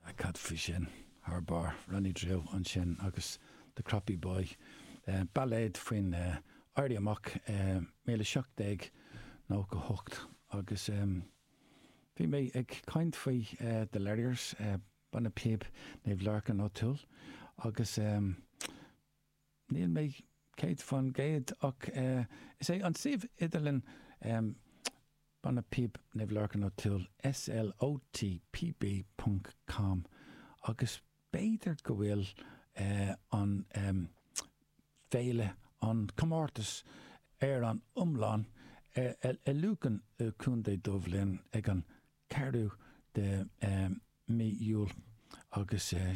Ah, cad faoi sin? Thar barr, Ronnie Drew ansin agus The Croppy Boy, bailéad faoin Éirí Amach i míle seacht déag nócha hocht. Agus bhí mé ag caint faoi The Larriers, banna píob Naomh Lorcán O'Toole agus. níl mé céad faoin gcéad ach is é an suíomh idirlín em banna píob Naomh Lorcán O'Toole SLOT pb ponc com agus b'fhéidir go bhfuil eh an em féile an comórtas ar an oileán eh i Lucan i gContae Dubh Linn ag an 4ú de em mí Iúil agus eh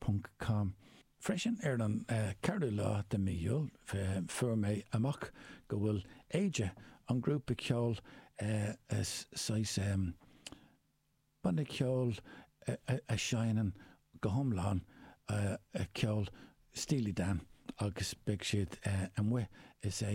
ponc com. Freisin ar an 4ú lá de mí Iúil fuair mé amach go bhfuil Aja, an grúpa ceoil saghas banna ceoil a sheinneann go hiomlán ceol Steely Dan agus beidh siad amuigh is é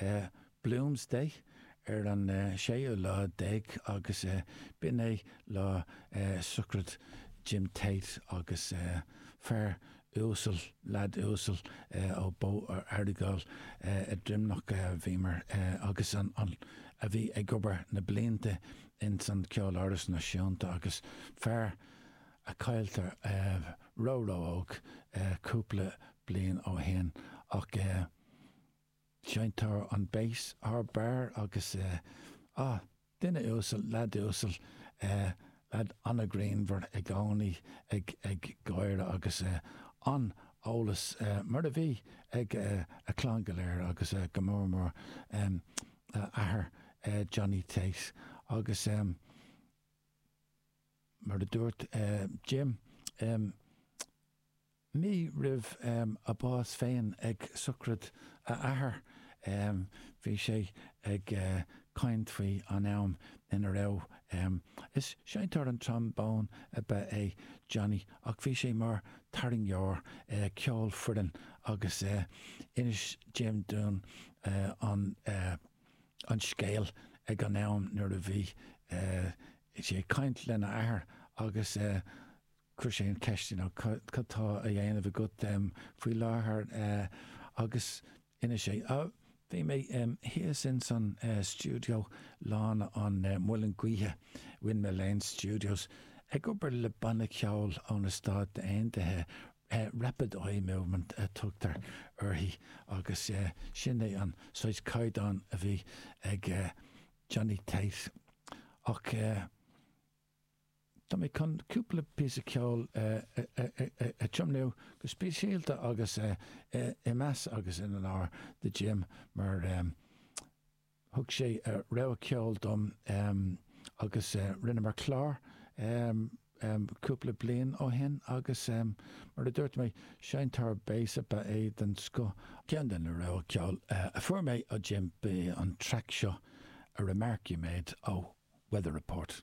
é Bloomsday ar an séú lá déag agus b'in é lá sochraid Jim Tate agus fear uasal, leaid uasal ó Bóthar Earagail i nDroimneach a bhíomar agus a bhí ag obair na blianta ins an Ceoláras Náisiúnta agus fear a cailleadh ró-ró-óg cúpla bliain ó shin ach Seinntear an béas thar barr agus eh, ah, duine uasal, leaid uasal eh, leaid an-ghreannmhar i gcónaí ag ag gáire agus eh, an-eolas eh, mar a bhí ag eh, a clann go léir agus eh, go mór mór em, a athair eh, Johnny Tate agus em, mar a dúirt eh, Jim em, Mí roimh a bás féin ag sochraid a athair bhí sé ag caint faoi an am ina raibh Is seinnteoir an trombone ab ea é Johnny ach bhí sé mar tarraingeoir ceolfhoireann agus inis Jim dúinn an scéal ag an am nuair a bhí sé ag caint lena athair agus Chuir sé an cheist, you know, cad tá á dhéanamh agat faoi láthair agus d'inis sé, ah, bhí mé thíos ins an stiúideo Lána an Mhuilinn Gaoithe, Windmill Lane Studios, ag obair le banna ceoil ó na Stáit Aontaithe, Rapid Eye Movement a tugtar uirthi agus sin é an saghas caighdeán a bhí ag Johnny Tate ach, Tá mé chun cúpla píosa ceoil a tiomnú go speisialta agus i meas agus in onóir do Jim mar thug sé rogha ceoil dom agus rinneamar clár cúpla bliain ó shin agus mar a dúirt mé Seinnteoir béas ab ea é den scoth. Ceann de na rogha ceoil a fuair mé ó Jim ab ea an traic seo A Remark You Made ó Weather Report.